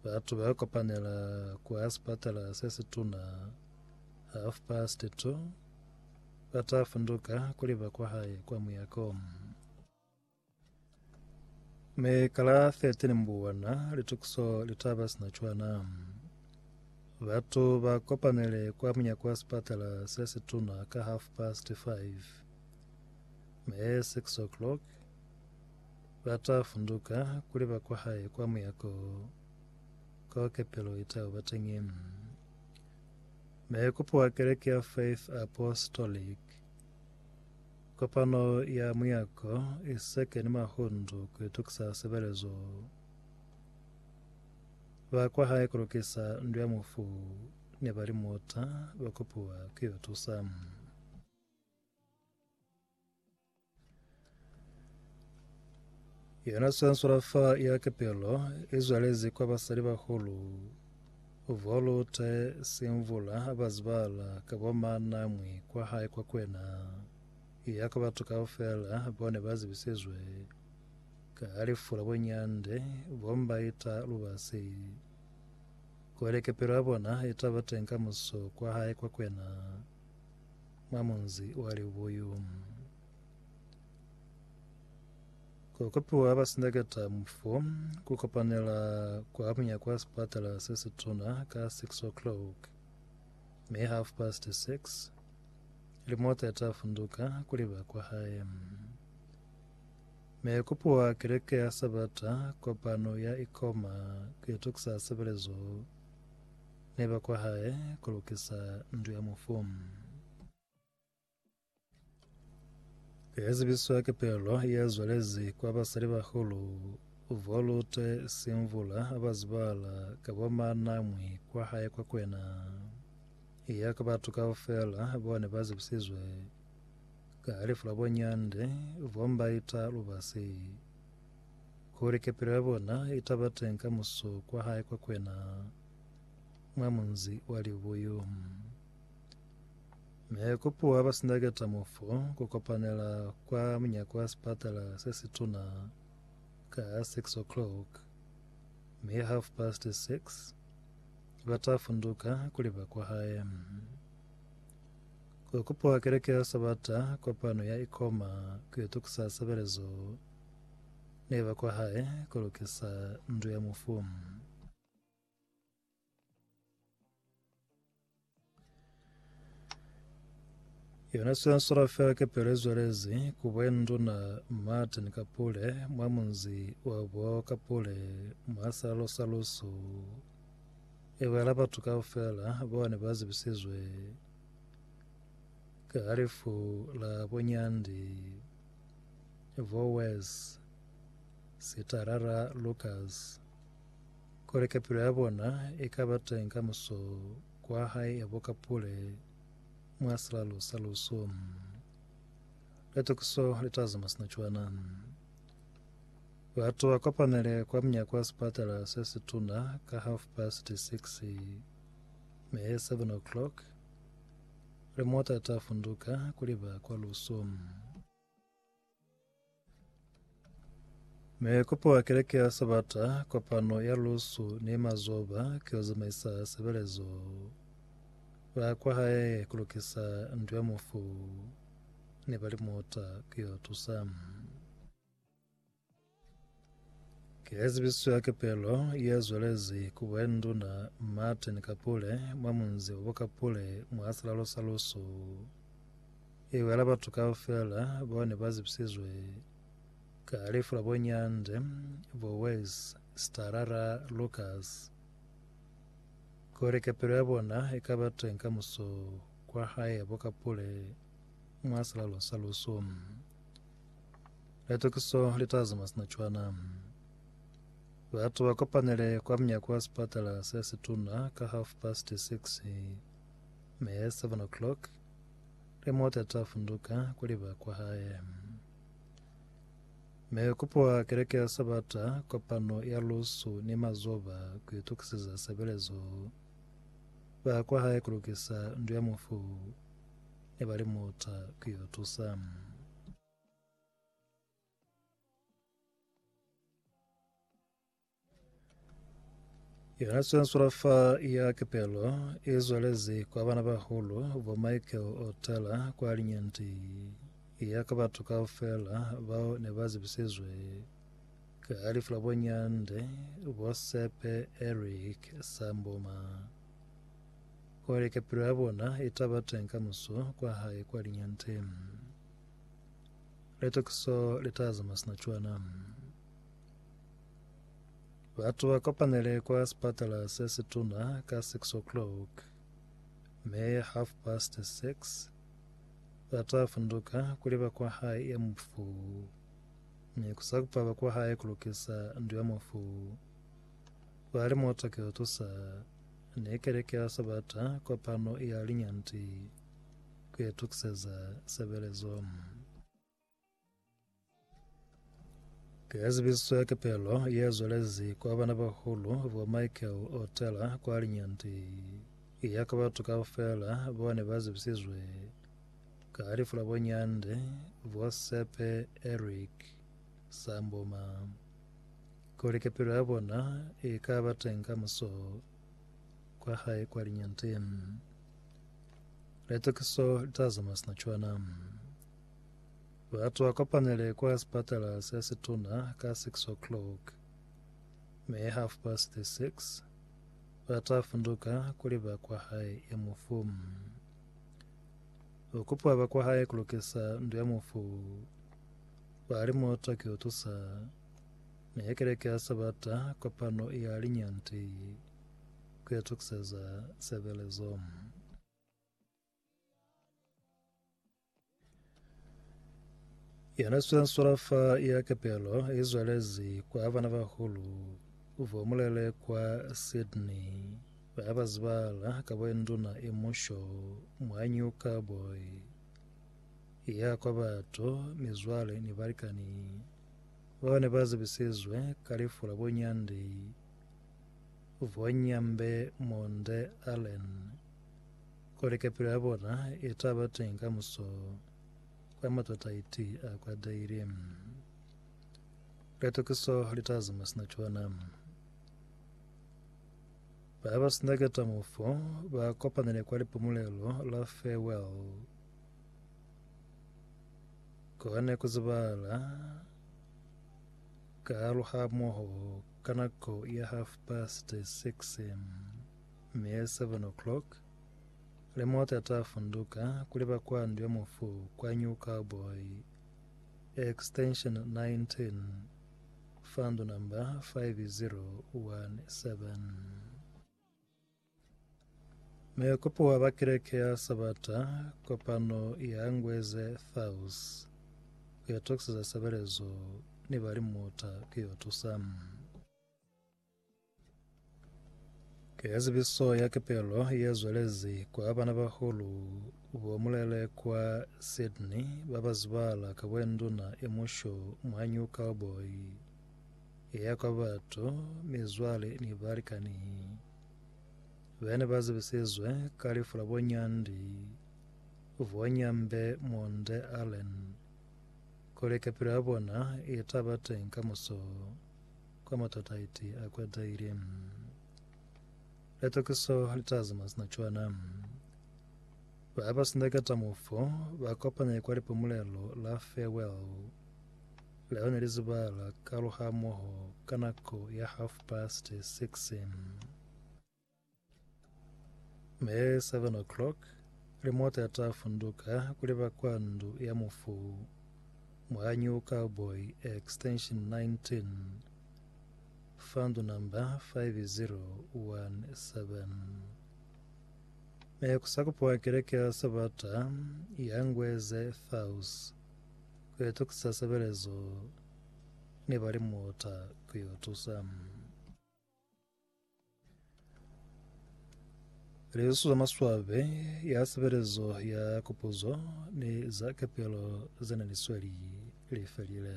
Batu ba kopanela kwa sipatala se situna half past two, ba ta funduka kuli ba kwahae kwa muyako. Mi ka la 13 Mbuwana, litukiso li ta ba sina cwana. Batu ba kopanele kwa munyako wa sipatala se situna ka half past five, mi 6 o'clock, Ba ta funduka ku liba kwa hae kwa muyako kao kepelo i tau ba teñi. Maikupo a Keleke ya Faith Apostolic, kopano ya muyako i seke ni mahundu ku itukisa sebelezo. Ba kwa hae ku lukisa ndu ya mufu ne ba li muta ba kupiwa ku yo tusa. Yona swanswala fa ya kepelo e zwalezi kwa basali bahulu volute semvula bazibala ka bomanamwi kwa hae kwa kwena ya kwa batu kaufela bone bazibisizwe ka alifu la bonyande bombaita lubasi kole kepelo ya bona itaba teng ka muso kwa hae kwa kwena mwa munzi wa Libuyu. Ku kopiwa ha basindaketa mufo ku kopanela kwa munyako wa sipatala se situna ka 6 o'clock me half past 6 limota eta funduka kuliba kwa hae me kopiwa keleke ya sabata kopano ya ikoma kuitokisa sebelezo Ne ba kwa hae ku lukisa ndu ya mufu. Ye zibiswa ki pelo ye zwalezi kwa basalibahulu Volute Simvula ba zibahala ka bo Manamwi kwa hae kwa Kwena. Iya ka batu kaufela bao ne ba zibisizwe ka lefu la bo Nyande, bo Mbaita Lubasi. kuli kepelo ya bona itaba teng ka muso kwa hae kwa kwena mwa munzi wa libuyu. Me kopuwa ba sindaketa mofo ku kopanela kwa munyako wa sipatala se situna ka 6 o'clock, mi half past 6 ba ta funduka kuli ba kwa hae. Kokupuwa keleke ya sabata kopano ya ikoma kuitukusa sebelezo ne ba kwa hae ku lukisa ndu ya mufu. Yona sensora fela ke pelezwelezi ku bwenduna Martin Kapule mwa munzi wa bo Kapule mwa salalo sa lusu e bwela batu kaufela bao ne ba zibisizwe ka halifu la bonyandi Vowez, Sitarara Lukas, kuli kapilo ya bona i ka ba teng ka muso kwa hae ya boka pule mwa silalo sa lusu. Litukiso li ta zuma sina cwana. Batu ba kopanele kwa mnyako wa sipatala se situna ka half past six, me seven o'clock, Re mota ta funduka kuli ba kwa luso. Me kopo wa keleke ya Sabata, kopano ya lusu ni mazoba ke yo zamaisa sebelezo. Ba kwa hae kulukisa ndu ya mufu ne ba li mota ke yo tusa. Ke ya zibiso ya kepelo ye zwelezi ku Bwenduna Martin Kapule mwa munzi wa Kapule mwa silalo sa Lusu. E wela batu kaufela bao ne ba zibisizwe ka lifu la bo Nyande, bo Wes, Starara, Lucas. Kuli kepelo ya bona e ka ba teng ka muso kwa hae bo Kapule mwa silalo sa Lusu. Litokiso li t'a zama sina cwana. Batu ba kopanile kwa munyako wa sipatala se situna ka half past six, mi at seven o'clock le mota li t'a funduka ku liba kwa hae. Mi kupuwa keleke ya Sabata, kopano ya lusu ni mazoba ku itokiseza sebelezo. Ba kwa hae ku lukisa ndu ya mufu ni ba li mota ku yo tusa. Yona sensurafa ya kepelo e zwalezi kwa bana bahulu bo Michael Otala kwa linyanti ya ka batho kaufela bao ne ba zibisizwe ka lifu la bonyande bo Sepe Eric Samboma gore kepelo ya bona e taba teng ka muso kwa hae kwa linyanteng. Litakiso litazama sina cwana. Batu ba kopanele kwa sepatala se situna ka 6 o'clock me half past 6 bata funduka kuli bakwa hae e mufu ni kusakupa bakwa hae kulukisa ndu ya mufu bali motoke otusa ne keleke ya sabata kopano ya linyanti ku itukiseza sebelezo. Ke yazibisiswe kepelo ye zwelezi kwa bana bahulu bo Michael Otela kwa linyanti ya ka batho kaufela bo ne ba zibisizwe ka lifu la bonyande bo Sepe Eric Samboma kuli kepelo ya bona e ka ba teng ka muso kwa hae kwa linyante letokiso litazama sina cwana batu akopanele kwa sipatala se situna ka 6 o'clock me half past the 6 batafunduka kuli ba kwa hae ya mufu okupa ba kwa hae kulukisa ndu ya mufu bali moto kiutusa Mi ha keleke ya Sabata, kopano ya linyanti ku itukiseza sebelezo. Yona swenswela fa ya kepelo i zwelezi kwa bana bahulu bo mulele kwa Sydney ba ba zibala ka bo induna i musho mwa New Cowboy ya kwa batu, mizwale ni balikani. Bao ne ba zibisizwe ka lifu la bunyandi bwa Nyambe Monde Allen ku lika pilu ya bona i ta ba teñi kamuso kwa matataiti a kwateli. Litokiso li ta zama sina cona. Ba ba sina ketamofo ba kopanile kwa lipumulelo la farewell. Kohane ku zibahala ka haluhamoho ka nako ya half past six mi ye seven o'clock, le mota ta funduka kuli ba kwa Ndu ya Mufu kwa New Cowboy, extension 19, fa ndu number 5017. Muikopi wa ba Kereke ya Sabata kopano ya Ngweze South ku yo tokiseza sebelezo ni ba limuta ku yo tusa. Keazibiso ya kepelo ye zwelezi kwa bana bahulu bo mulele kwa Sydney ba ba zibala ka bwenduna e musho mwa New Cowboy e ya kwa batu, mizwale ni balikani. Be ne ba zibisizwe ka lifu la bo Nyandi, bo Nyambe Munde Allen, kuli kepilo ya bona i ta ba teñi kamuso kwa matataiti a kwetahile. Litokiso li ta zama sina cwana. Ba ba sindaketa mufu ba kopani kwa lipumulelo la farewell. Leo ne li zuba la kaluhamoho ka nako ya half past six me seven o'clock limota ya ta funduka kuli ba kwa ndu ya mufu mwa New Cowboy extension 19 fandu number 5017 Mekusakupwa keleke ya Sabata ya Ngweze Thaus Ku itokisa sebelezo ne ba li muta ku yo tusa. Lisu za maswabi ya sebelezo ya kupuzo ni za kepelo ze ne li sweli li felile.